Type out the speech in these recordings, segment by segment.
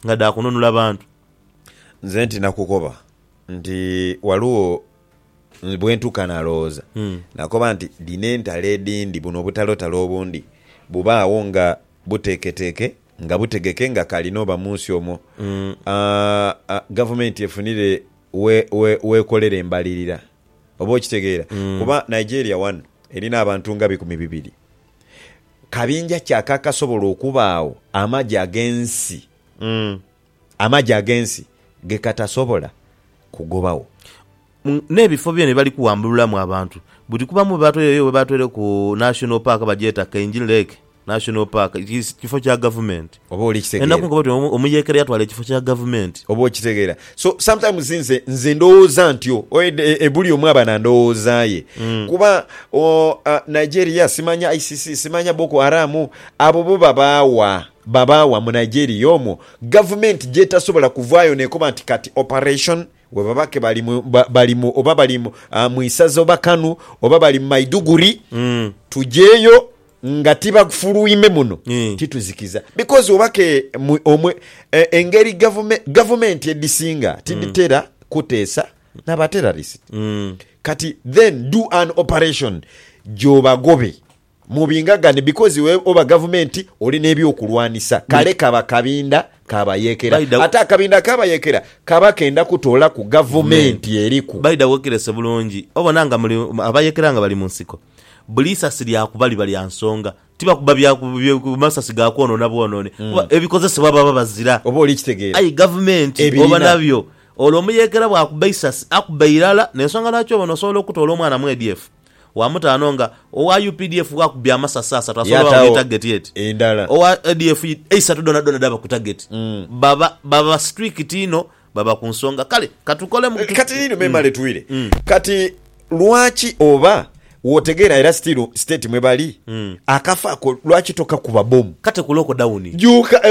Nga dha kununula bantu. Nze nti nakukoba nti ghaligho bwentuka nalowooza nakoba nti dhino entalo edhindi buno obutalotalo obundi bubaagho nga buteeketeeke nga butegeke nga kali n'oba mu nsi omwo gavumenti efunire w'ekolera embalirira. Oba okitegeera? Kuba Nigeria wano erina abantu nga bikumi bibiri kabinja ki akakasobola okubaagho amagye ag'ensi amagye ag'ensi ge katasobola kugobagho? N'ebifo byona bye bali kuwambululamu abantu buli kuba mu bibaato. Eyo we baatweireku National Park bagyeta Kainji Lake National Park, kifo kya gavumenti. Oba oli kitegeera. Enaku nkoba oti omuyekera yatwala ekifo kya gavumenti. Oba okitegeera. So sometimes nze nze ndowooza ntyo buli omu aba na ndowooza ye. Kuba Nigeria simanya ICC simanya Boko Haram abo bo babaawa babaawa mu Nigeria omwo gavumenti gyetasobola kuvaayo nekoba nti kati operation bwebaba ke bali mu bali mu oba bali mu isaza oba Kanu oba bali mu Maiduguri tugyeyo Nga tibagfuluime muno tituzikiza because oba ke omwe engeri gavumenti edhisinga tidhitera kuteesa na ba terrorist kati then do an operation gyobagobe mu binga gani because iwe oba gavumenti oli nebyokulwanisa kale kaba kabinda ka bayekera ate akabinda ka bayekera kaba kenda kutolaku gavumenti eriku. By the way okirese bulungi obona nga muli abayekera nga bali munsiko. buli isasi lyakuba liba lya nsonga, tibakuba bya masasi ga kwonoona bwonoone kuba ebikozesebwa baba bazira. Oba oli kitegeera. Aye gavumenti oba nabyo olwo omuyeekera bw'akuba isasi akuba irala n'ensonga lwaki obona osobola okutoola omwana mu ADF wa mutaano nga owa updf bw'akubye amasasi asatu asobola oba buli tageti eti owa ADF eisatu dhoonadhoona dhaba ku tageti. Baba baba strict inho Baba ku nsonga. Kale ka tukolemu. Kati, kati liino me male twire. Kati, lwaki oba wootegeera era still state mwe bali, akafo ako lwaki tokakuba bbomu? Kate ku lockdown. Juuka,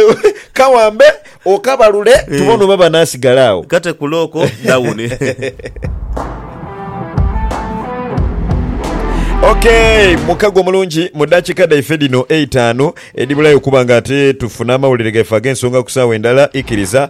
kawambe okabalule tubone oba banaasigala agho. Kate ku looko dawuni. Ok, mukago omulungi, mu ddakiika dhaife dhino eitaanu edhibulayo okuba nga ate tufune amawulire gaife ag'ensonga ku saawa endala, ikiriza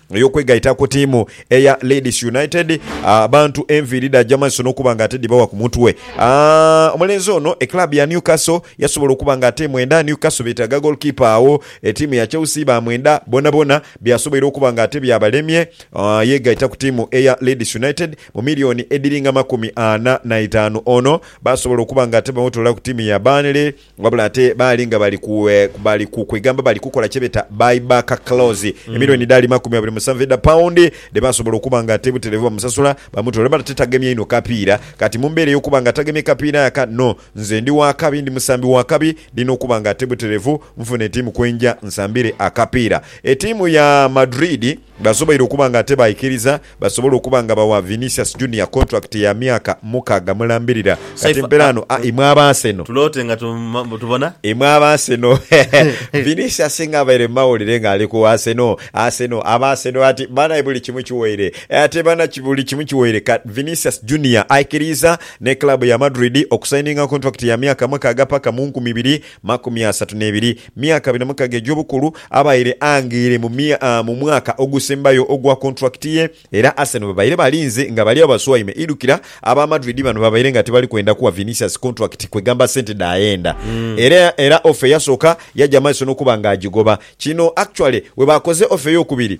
Ey'okwegaita ku tiimu eya Leeds United, abantu enviiri dhaja maiso n'okuba nga ate dhibawa ku mutwe. Omulenzi ono e club ya Newcastle yasobola okuba nga ate emwenda. Newcastle beetaaga goalkeeper agho e tiimu ya Chelsea baamwenda. Boonaboona byasoboire okuba nga ate byabalemye, yeegaita ku tiimu eya Leeds United mu milioni edhiringa makumi ana na itaanu. Ono baasobola okuba nga ate bamutwala ku tiimu ya Burnley. Wabula ate baali nga bali ku bali ku kwegamba bali kukola kye beeta buy back clause, emilioni edhali makumi abiri musanvu edha paundi dhe basobola okuba nga ate butereevu bamusasula bamutwale. Wabula ate tagemye inho kapiira kati mu mbeera ey'okuba nga tagemye kapiira aka no nze ndi wa kabi, ndi musambi wa kabi, ndina okuba nga ate butereevu nfuna etiimu kwe nja nsambire akapiira. Etiimu ya Madrid basoboire okuba nga ate baikiriza. basobole okuba nga bawa Vinicius Junior contract ya myaka mukaaga mulambirira. Kati mpera ano a imwe aba Arsenal. Tuloote nga tubona. Imwe aba Arsenal Vinicius singa abaire mu mawulire nga ali ku Arsenal, Arsenal, aba Arsenal ati banae buli kimu kiwaire. Ate bana buli kimu kiwaire ka Vinicius Junior aikiriiza ni club ya Madrid okusaininga contract ya myaka mukaaga paka mu nkumi ibiri makumi asatu n'ebiri. Myaka abiri na mukaga egy'obukulu, abaire ang'eire mu mwaka ogusembayo ogwa kontulakiti ye era Arsenal babaire balinze nga bali agho baswaime. Idhukira aba Madrid bano babaire nga tibali kwenda kuwa Vinicius kontulakiti kwegamba sente dhaghenda era ofa eyasooka yaja maiso n'okuba nga agigoba. Kino actually webakoze ofa ey'okubiri.